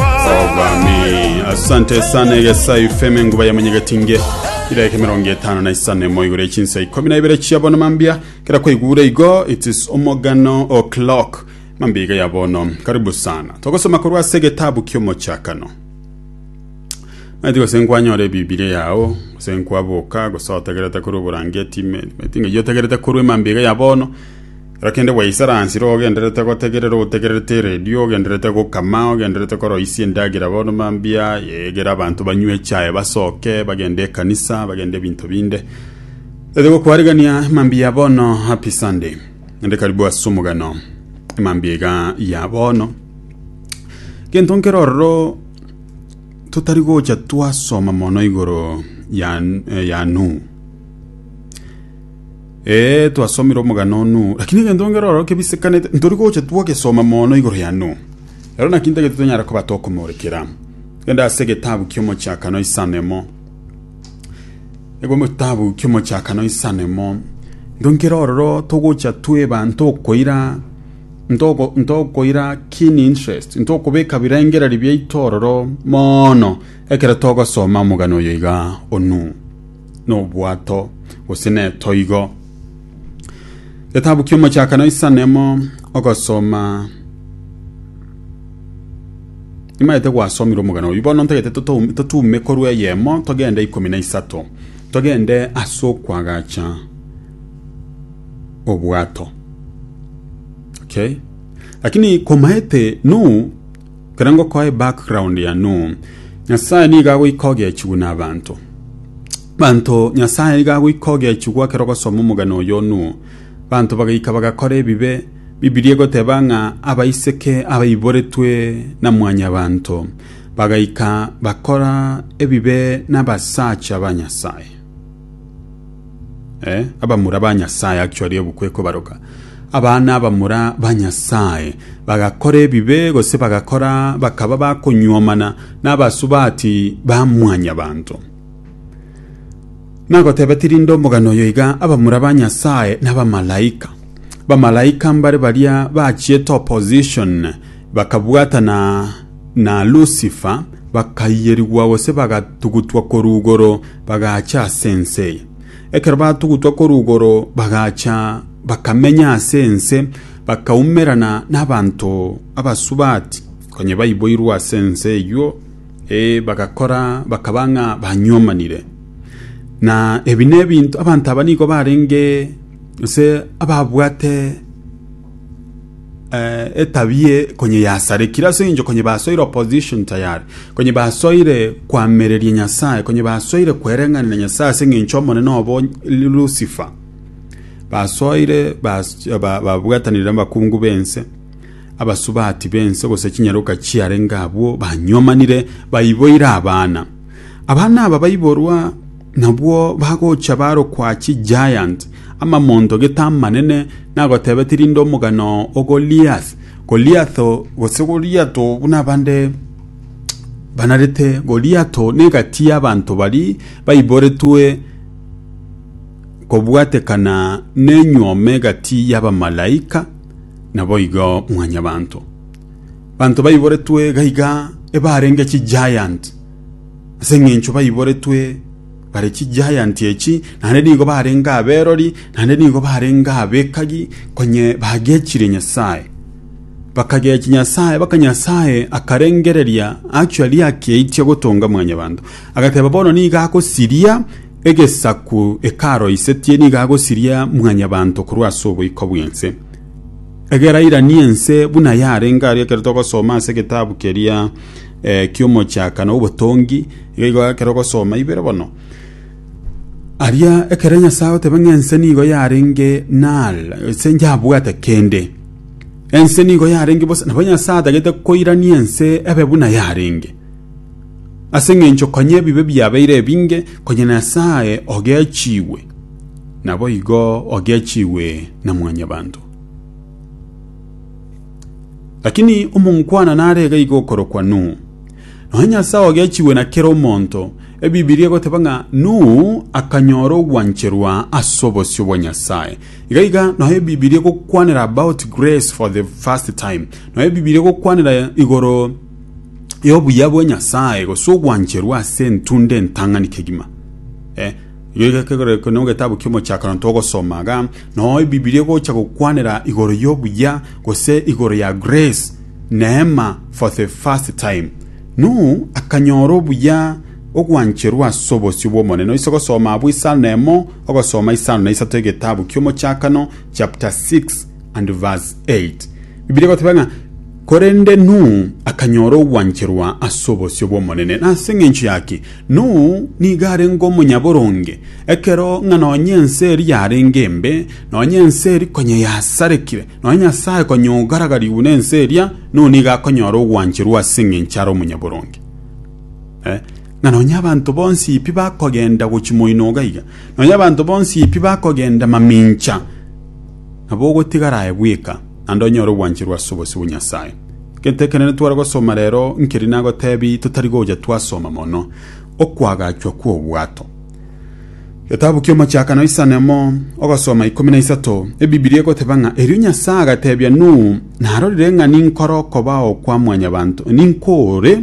obwami asante sana egesayo ifeme nguba ya munyegetinge ireke mirongo etano na isano emo igoro echinsa ikomi na ibere chia bono mambia kera kwaigura igo it is omogano o'clock mambia iga ya bono karibu sana togosoma korwa ase egetabu kiomochakano maiti gose nkwanyora ebibilia yao gose nkwaboka gose otegerete korwa oborangeti me- maiti ng'ai otegerete korwa emambia iga ya bono Kera kende bwaisaransire ogendererete gotegerera, otegererete eredio, ogendererete gokama, ogendererete koroisia endagera bono mambia, egera abanto banywe echae, basoke, bagende ekanisa, bagende ebinto binde. Ete gokwarigania mambia bono happy Sunday. Ende karibu ase omogano. Mambia iga ya bono. Gento nkero ororo totari gocha twasoma mono igoro ya, ya Nuhu. Ee, twasomire omogano onu, lakini egento ngero oro kebisikanete, ntori gocha twagesoma mono igoro yano. Ero naki ntagete tonyare koba tokomorekera. Gende ase egetabu ki'Omochakano isano emo. Egetabu ki'Omochakano isano emo. Nto nkero ororo togocha tweba ntokoira ntoko ntokoira keen interest ntokobeka birengererio biaito ororo mono ekero togosoma omogano oyo iga onu. nobwato gose netoigo getabu kiomochakano isanemo ogosoma imaete gwasomire omogana oyu bono ntagete totou- totume korwa eyemo togende ikomi na isato togende ase okwagacha obwato okay lakini komaete nu Kero ngokoe background yano, Nyasae nigo agoika ogechigwa na abanto. Banto Nyasae nigo agoika ogechigwa kero ogosoma omogano oyo onuo. Banto bagaika bagakora ebibe, Bibilia egoteba ng'a abaiseke abaiboretwe na mwanyabanto bagaika bakora ebibe nabasacha ba Nyasae. Eh, abamura ba Nyasae actually ebuku ekobaroka. Abana abamura ba Nyasae bagakora ebibe gose bagakora bakaba bakonyuomana n'abasubati ba mwanyabanto. Nagoteba tirinde omogano oyo iga abamura ba Nyasae n'abamalaika. Bamalaika mbare baria bachiete opposition bakabwatana na Lusifer bakaiyerigwa gose bagatugutwa korwa igoro bagacha ase ense. Ekero batugutwa korwa igoro bagacha bakamenya ase ense bakaumerana n'abanto abasubati konya baiboirwe ase ense eyio ee bagakora bakaba ng'a banyuomanire. Na ebi nebinto abanto aba nigo barenge gose ababwate eh, etabia eye konye yasarekire ase eng'encho konye basoire opposition tayari konye basoire kwamereria nyasaye konye basoire kwereng'anera nyasaye ase eng'encho omonene obo lucifer basoire bas- ba- babwatanire abakungu b'ense abasubati b'ense gose chinyaroka chiarenge abwo banyomanire baiboire abana abana aba baiborwa Nabwo bagocha barokwa chigiant, amamonto gete amanene, nagotebeti rinde omogano o Goliath. Goliath, gose Goliato buna abande banarete, Goliato negati y'abanto baria baiboretwe kobwatekana nenyuoma egati y'abamalaika naboigo mwanyabanto. Banto baiboretwe gaiga ebarenge chigiant. ase engencho baiboretwe bare chigiant echi, naende nigo barenge aberori, naende nigo barenge abekagi, konye bagechire Nyasae. Bakagechi Nyasae, baka Nyasae akarengereria achwa riaki aitia gotonga mwanyabanto. Agateba bono nigo agosiria egesaku ekaroisetie, nigo agosiria mwanyabanto korwa ase oboiko bw'ense. Egera airanie ense buna yarenge aria ekero togosoma ase egetabu keria eh, ki'omochaka na obotongi iga igo ekero ogosoma ibere bono aria ekero nyasae agoteba ng'a ense nigo yarenge nal ense njabwate kende ense nigo yarenge bosa nabo nyasae atagete koirania ense ebe buna yarenge ase ng'encho konya ebibe biabeire ebinge konya nyasae ogechigwe nabo igo ogechigwe na mwanyabanto Lakini omongwana nare iga iga okorokwa Nuhu. Nonya Nyasae ogechigwe na kera omonto, Ebibilia egoteba ng'a Nuhu akanyora ogwancherwa ase obosio bwa Nyasae. Iga iga nonya Ebibilia egokwanera about grace for the first time. Nonya Ebibilia egokwanera igoro y'obuya bwa Nyasae gose ogwancherwa ase entunda entang'ani kegima. Eh, Erio egekegorerokio na egetabu ki'Omochakano togosoma iga, Noo Ebibilia egocha gokwanera igoro y'obuya, gose igoro ya grace, neema, for the first time. Nuhu akanyora obuya, ogwancherwa ase obosio bw'Omonene. Noise gosoma abwo isano na emo, ogosoma isano na isato egetabu ki'Omochakano chapter 6 and verse 8. Ebibilia egoteba ng'a, Korende Nuhu akanyora ogwancherwa ase obosio bw'Omonene. Nase engencho yaki? Nuhu nigo arenge omonyaboronge, ekero ng'a nonya ense eria yarenge embe, nonya ense eria konya yasarekire, nonya Nyasae konya ogaragarigwe nense eria, Nuhu nigo akonyora ogwancherwa ase engencho are omonyaboronge. Eh, ng'a nonya abanto bonsi pi bakogenda gochia moino iga iga, nonya abanto bonsi pi bakogenda mamincha, nabo ogotigara aye bweka, naende onyore ogwancherwa ase obosio bwa Nyasae. Gento ekenene tware gosoma rero nkeri nagotebi totari gocha twasoma mono okwagachwa kw'obwato. Getabu ki'Omochakano isanemo ogasoma ikomi na isato, Ebibilia egoteba ng'a erio Nyasae agatebia Nuhu, Narorire ng'a ninkore okobao kwa mwanyabanto, ninkore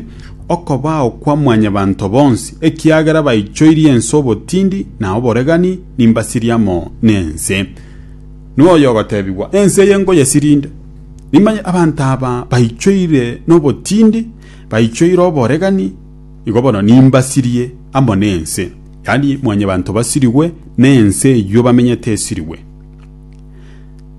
okobao kwa mwanyabanto bonsi, ekiagera baichoirie ense obotindi na oboregani, nimbasirie amo nense. Nuhu oyogotebigwa, Ense eye nkoyesirinde. Nimanye abanto aba baichoire nobotindi, baichoire oboregani, nigo bono nimbasirie amo nense, yaani Mwanyabaanto basirigwe, na ense eyio bamenyete esirigwe.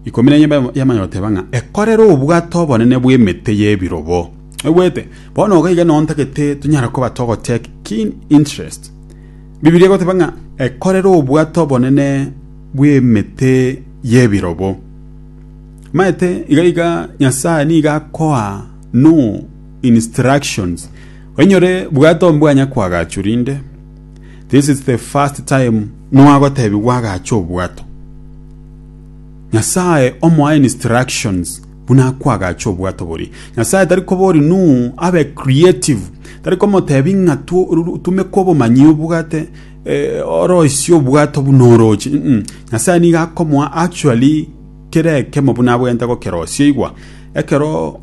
Ikomi na enye yamanya goteba ng'a ekorere obwate obonene bw'emete y'ebirobo. Oigwete? Bono iga iga nontagete tonyare koba togotake keen interest. Bibilia egoteba ng'a ekorere obwate obonene bw'emete y'ebirobo. Maete iga iga Nyasae nigo akoa no instructions oinyore bwate ombwanya kw'agacho rinde this is the first time nwagotebigwa agache obwato Nyasae omoa instructions buna akwa agache obwato bori Nyasae tari kobori nu abe creative tari komotebi ng'a tu- ru- tumeka obomanyi obwate eh, oroisie obwato buna oroche Mm-mm. Nyasae nigo akomoa actually Kera ekemo buna abwenerete gokerosia igwa, ekero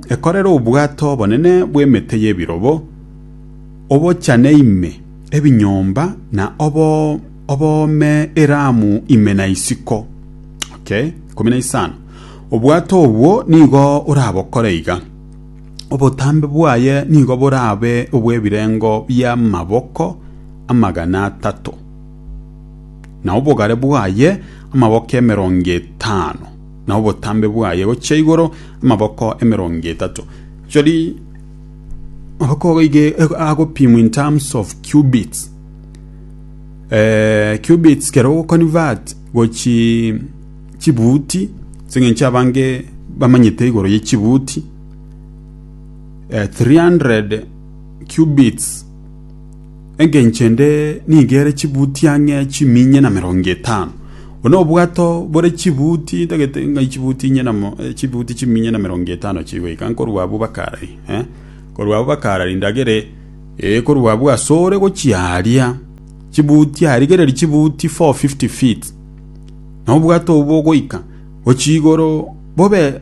ekorera obwato obonene bw'emete y'ebirobo, obochane ime ebinyomba na oboome eramu ime na isiko. Ikomi na isano. Obwato obwo nigo orabokore iga, obotambe bwaye nigo borabe obw'ebirengo bi'amaboko amagana atato. na obogare bwaye amaboko emerongo etano, na obotambe bwaye gochia igoro amaboko emerongo etato. Chori amaboko goige agopimwa in terms of cubits. Eh, cubits kero ogoconvert gochi chibuti, aseng'encho abange bamanyete igoro ye chibuti, eh, 300 cubits. Engencho ende nigo ere chibuti ang'e chiminye na merongo etano. Bono obwato bore chibuti ntagete ng'ai chibuti inye na mo- eh, chibuti chiminye na merongo etano chigoika nkorwa abwo bakarari eh? korwa abwo bakarari ndagere eh, korwa abwo asore gochia aria chibuti arigereri chibuti 450 feet na obwato obwo bogoika gochia igoro bobe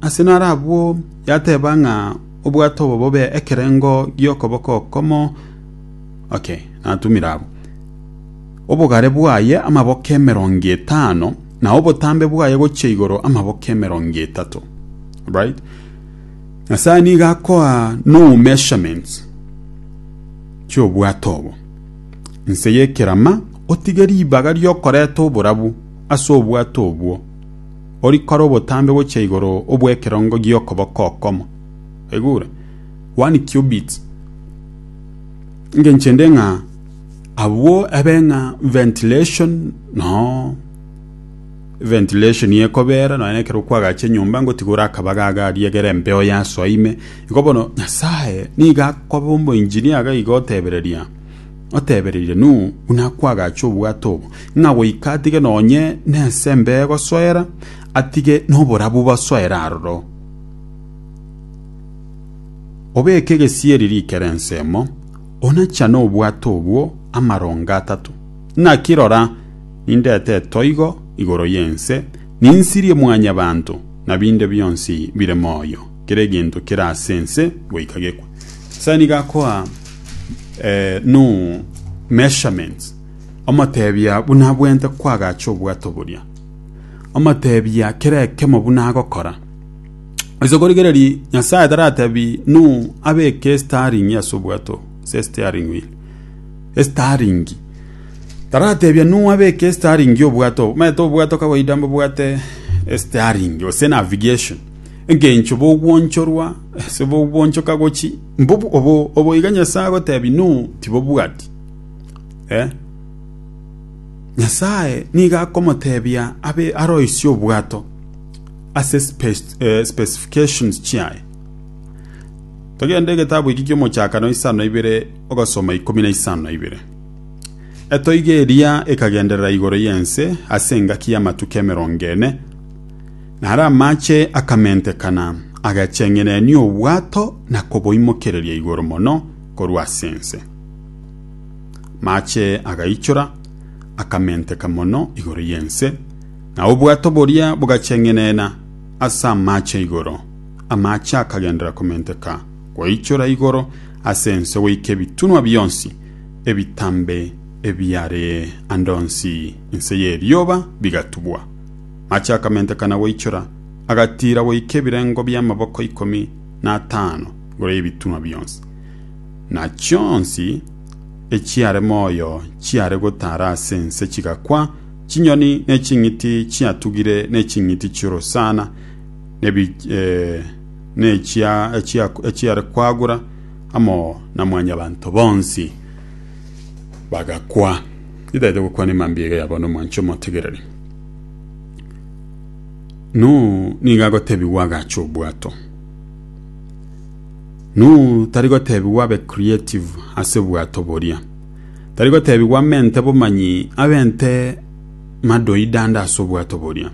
ase naro abwo yateba ng'a Obwato obo bobe ekerengo gi'okoboko okomo oke natumire abwo. Obogare bwaye amaboko emerongo etano, na obotambe bwaye gochia igoro amaboko emerongo etato. Right? Nyasae nigo akoa no measurements chi'obwato obo. Inse y'ekerama otige ribaga ri'okoreta oborabu ase obwato obwo. orikore obotambe gochia igoro obw'ekerongo gi'okoboko okomo, egure, one cubit, engencho ende ng'a abwo ebe ng'a ventilation no ventilation ekobera nonya na ekero kwagacha enyomba ngotigora akabaga iga aria egere embeo yasoa ime. Igo bono Nyasae nigo akoba omoengineer iga otebereria. Otebereire Nuhu buna akwagache obwato obo, ng'a goika atige nonye nesembe egosoera, atige noborabu bosoere aroro. Obeke egesieri rikere ensemo, onachane obwato obwo amaronga atato. Naki rora, nindete etoigo igoro y'ense, ninsirie mwanyabanto, na binde bionsi bire moyo, kera egento kere ase ense goika gekwe. Nyasae nigo akoa. eh, no measurements omotebia buna abwente kwagacha obwato boria omotebia kera ekemo buna agokora ase korigereria nyasaye taratebi nu abeke staring ase obwato se staring wheel staring taratebia nu abeke staring obwato maete obwato kawaida mbobwate staring ose navigation engencho bogwonchorwa ase bogwonchoka gochi Obo iga Nyasae agotebi no tibobwati eh. Nyasae nigo akomotebia abe aroisie obwato ase specifications chiaye. Togende egetabu eki kiomochakano isano na ibere ogosoma ikomi na isano na ibere. Etoigo eria ekagenderera igoro y'ense ase engaki y'amatuko emerongo ene. Na are amache akamentekana, agacheng'erenia obwato na koboimokereria igoro mono korwa ase ense. Amache agaichora, akamenteka mono igoro y'ense, na obwato boria bogacheng'erena ase amache igoro. Amache akagenderera komenteka goichora igoro ase ense goika ebitunwa bionsi ebitambe ebiare ande onsi inse y'erioba bigatubwa. Ng'achi akamentekana goichora, agatiira goika ebirengo bi'amaboko ikomi na atano igoro y'ebitunwa bionsi, na chionsi echiare moyo chiare gotaara ase ense chigakwa, chinyoni ne ching'iti chiatugire ne ching'iti chi'orosana echiare kwagura amo na Mwanyabanto bonsi bagakwa. Nitaete gokwana emambia iga yabo nomwancha omotegereri. Nuhu nigo agotebigwa agache obwato. Nuhu tari gotebigwa abe creative ase bwato boria. Tari gotebigwa amente bomanyi abente madoidanda ase obwato boria.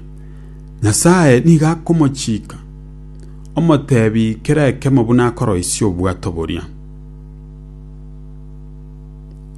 Nyasaye nigo akomochika omotebi kera ekemo buna akoroisia obwato boria.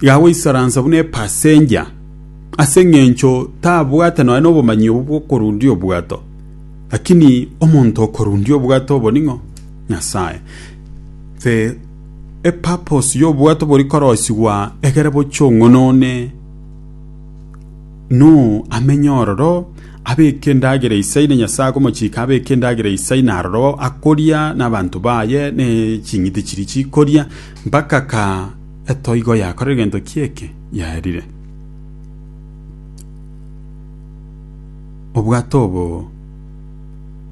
igagoisaransa buna epasenja, ase engencho tabwate nonya nobomanyi obo bw'okorundia obwato. Lakini omonto okorundia obwato obo ning'o? Nyasae. The epurpose y'obwato bori korosigwa egere bochie ong'onone Nuhu amenye ororo, abeke endagera isai na Nyasae akomochika abeke endagera isai na aroro akoria na abanto baye ne ching'iti chiria chikoria mpaka ka Etoigo yakora egento ki eke? Yaerire. Obwato obo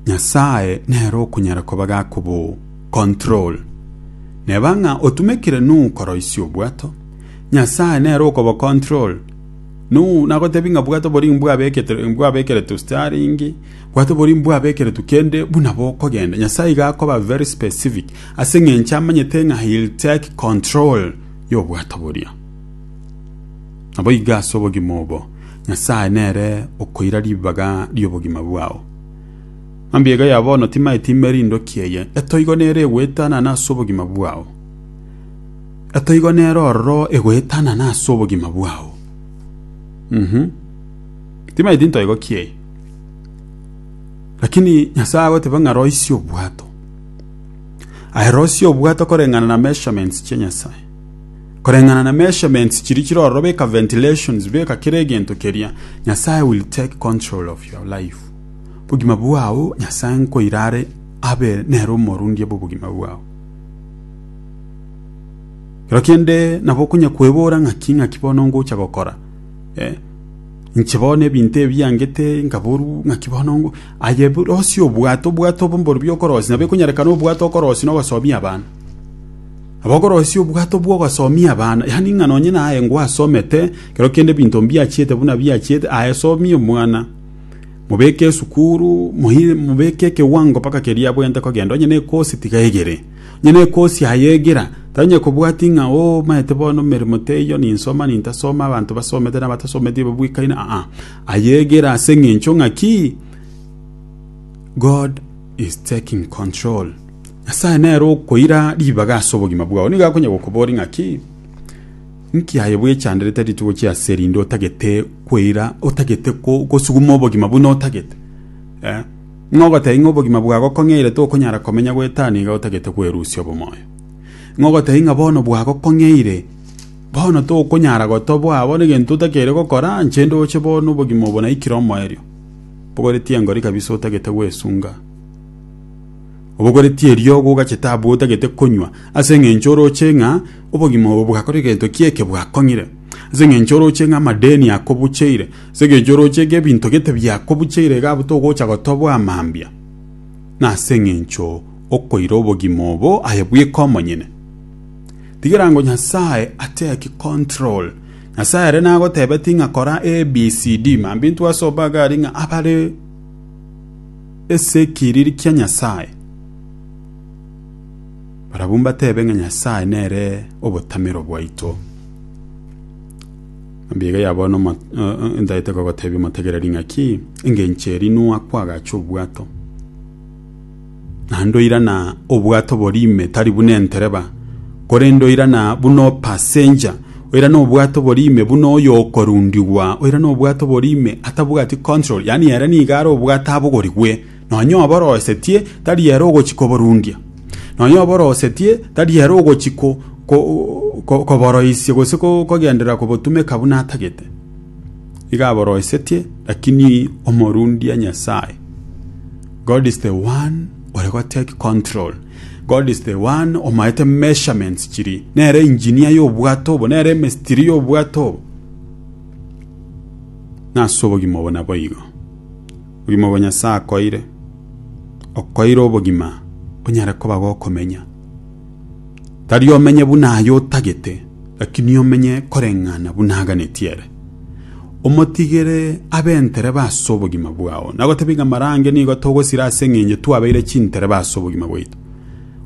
Nyasae nere okonyara koba gakobo control. Neba ng'a otumekire Nuhu koroisia obwato, Nyasae nere okobo control. Nuhu nagotebi ng'a bwato bori mbwabekete mbwabekere tu steering, bwato bori mbwabekeretu kende buna bokogenda. Nyasae iga akoba very specific. ase engencho amanyete ng'a he'll take control y'obwato boria. Naboigo ase obogima obo, Nyasae nere okoira ribaga ri'obogima bwao. Mambia iga ya bono timaeti ime rindoki eye, etoigo nere egoetanana ase obogima bwao. Etoigo nere ororo egoetanana ase obogima bwao. Mhm. Timaeti ntoigo ki eye. Lakini Nyasae agoteba ng'a roisia obwato. Aye Rosie obwate koreng'ana na measurements chia Nyasae. Koreng'ana na measurements chiri chire ororo beka ventilations beka kera egento keria. Nyasae will take control of your life. Bogima bwao Nyasae nkoira are abe nere omorundia bw'obogima bwao. Kero kende nabo okonya kwebora ng'aki ng'aki bono ngocha gokora. Eh? Inche bono ebinto ebi biangete nkaboru, naki bono aye borosie obwato, obwato obo mborobio okorosia, nabo ekonyarekana obwato okorosia na ogosoomia abana. Nabo okorosia obwato bwa ogosoomia abana, yaani ng'a nonye naye ngwasomete, ekero kende ebinto mbiachiete buna biachiete, aye somia omwana, mobeke esukuru, moyi- mobeke ekewango mpaka keria abwenerete kogenda, onye ne ekosi tiga egere. Onye nekosi yaye egira, tari onye kobwati ng'a omaete bono emeremo teiyo, ninsoma, nintasoma, abanto basomete na abatasometi ebabuikaine, aa, aye egira ase engencho ng'a ki? God is taking control. Nyasae nere okoira ribaga ase obogima bwao. Nigo akonya gokoboria ng'a ki? Nki aye bwechanderete rituko chi'ase erinde otagete koira, otagete kosuguma obogima buna otagete? Eh? Ng'a ogotebia ng'a obogima bwagokong'eire tokonyara komenya goetania iga otagete kwerusia obomoyo? Ng'a ogotebia ng'a bono bwagokong'eire bono tokonyara gotoboa bono egento otakeire gokora inche ndoche bono obogima obo naikire omoerio? Bogoretie engori kabisa otagete gwesunga. Obogoretie eriogo ogachete abwo otagete konywa ase eng'encho oroche ng'a obogima obo bwakore egento ki'eke bwakong'ire. Ase eng'encho oroche ng'a amadeni akobucheire. As'engencho oroche gebinto gete biakobucheire iga abwo togocha gotoboa amambia, na as'engencho okoira obogima obo aye bweka omonyene. Tigera ngo Nyasaye ateki control. Nyasaye ere nagotebeti ng'a kora ABCD, mambia intwe ase obaga aria ng'a abare es'ekiriri kia Nyasaye, barabwo mbatebe ng'a Nyasaye nere obotamero bwaito. Mbiige ya bono mo- eh, eh, ntaete kogotebia omotegereri ng'a ki engencho eri Noa kwagacha obwato. Naende oirana obwato boria ime tari buna entereba, korende oirana buna opasenja, oirana obwato boria ime buna oyo okorundigwa, oirana obwato boria ime atabwati control, yaani ere nigo are obwato abogorigwe. Nonya oboroisetie tari ere ogochi koboruundia, nonya oboroisetie tari ere ogochi koboroisia gose kogenderera kobotumeka buna atagete. Iga aboroisetie, lakini omoruundia Nyasae. God is the one ore gotake control. God is the one omaete measurements chiri. Nere engineer y'obwato obo, nere emestiri y'obwato obo. Nase obogima obo naboigo. Obogima bwa Nyasae akoire, okoire obogima onyare koba gokomenya. Tari omenye buna aye otagete, lakini omenye koreng'ana buna aganetie ere. Omotigere abe entereba ase obogima bwao. Nagotebie ng'a marange nigo togosira ase eng'encho twabeire chintereba ase obogima bwaito.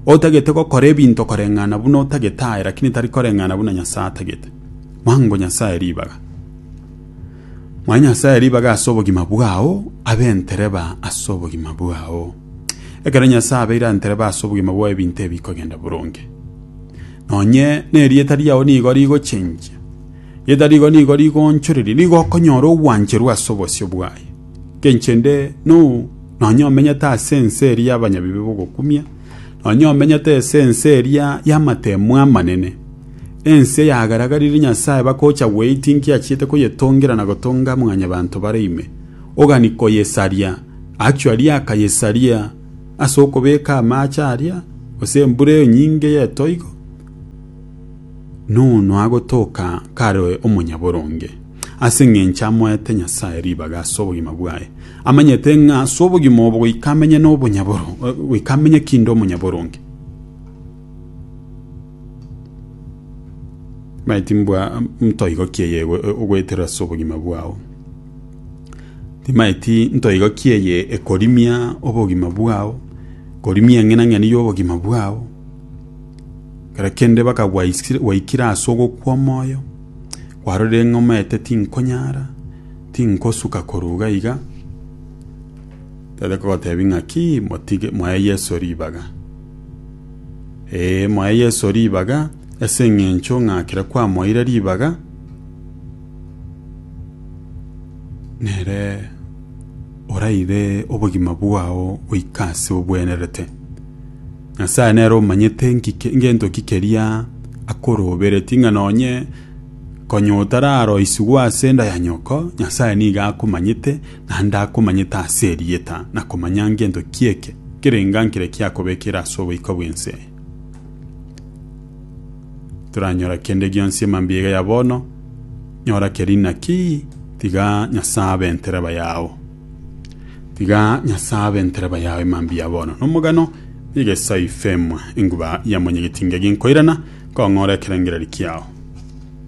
Otagete gokora ebinto koreng'ana buna otagete aye, lakini tari koreng'ana buna Nyasae atagete. Mwango Nyasae ribaga. Mwae Nyasae, ribaga ase obogima bwao, abe entereba ase obogima bwao. Ekero Nyasae abeire entereba ase obogima bwao ebinto ebi bikogenda boronge. Nonye nerieta riao nigo rigochengia, rieta rigo nigo rigoonchoreria, nigo okonyora ogwancherwa ase obosio bwaye. Nkenchende, noo, nonye omenyete ase ense eri y'abanyabibe bogokumia, nonya omenyete ase ense eria y'amateemu amanene, ense yagaragaririe Nyasae bakocha gweitinkia achiete koyetongera na gotonga mwanyabanto bare ime, ogani koyesaria, actually akayesaria ase okobeka amaache aria, gose embura eyo nyinge y'etoigo, nono agotoka kare omonyaboronge. ase engencho amoete Nyasae ribaga ase obogima bwaye, amanyete ng'a ase obogima obo goika amenye nobonyaboro, goika amenye kinde omonyaboronge. Maeti mbwa ntoigokie eye ogoeterera ase obogima bwao. Timaeti ntoigokie eye ekorimia obogima bwao, korimia eng'enang'eni y'obogima bwao, kera kende baka gwaikire ase ogokwa omoyo, Kwarorire ng'a omanyete tinkonyara, tinkosuka koruga iga, tari kogotebia ng'aki, motige, moe Yeso ribaga. Ee, moe Yeso ribaga, ase eng'encho ng'a kera kwamoeire ribaga, nere oraire obogima bwao goika ase obwenerete. Nyasae nere omanyete ng'iki ngento ki keria akoroberetie, ng'a nonye konya otararoisigwa ase enda ya nyoko, Nyasae nigo akomanyete, naende akomanyete ase erieta, na komanya ngento ki eke kerenga nkire kiakobekire ase oboika bw'ense eye. Toranyora kende gionsi emambia ya bono, nyora keria inaki, tiga Nyasae abe entereba yao. Tiga Nyasae abe entereba yao emambia bono nomogano negesao ifemwa enguba yamonyegetinga egenkoirana kong'ora ekerengererio kiao.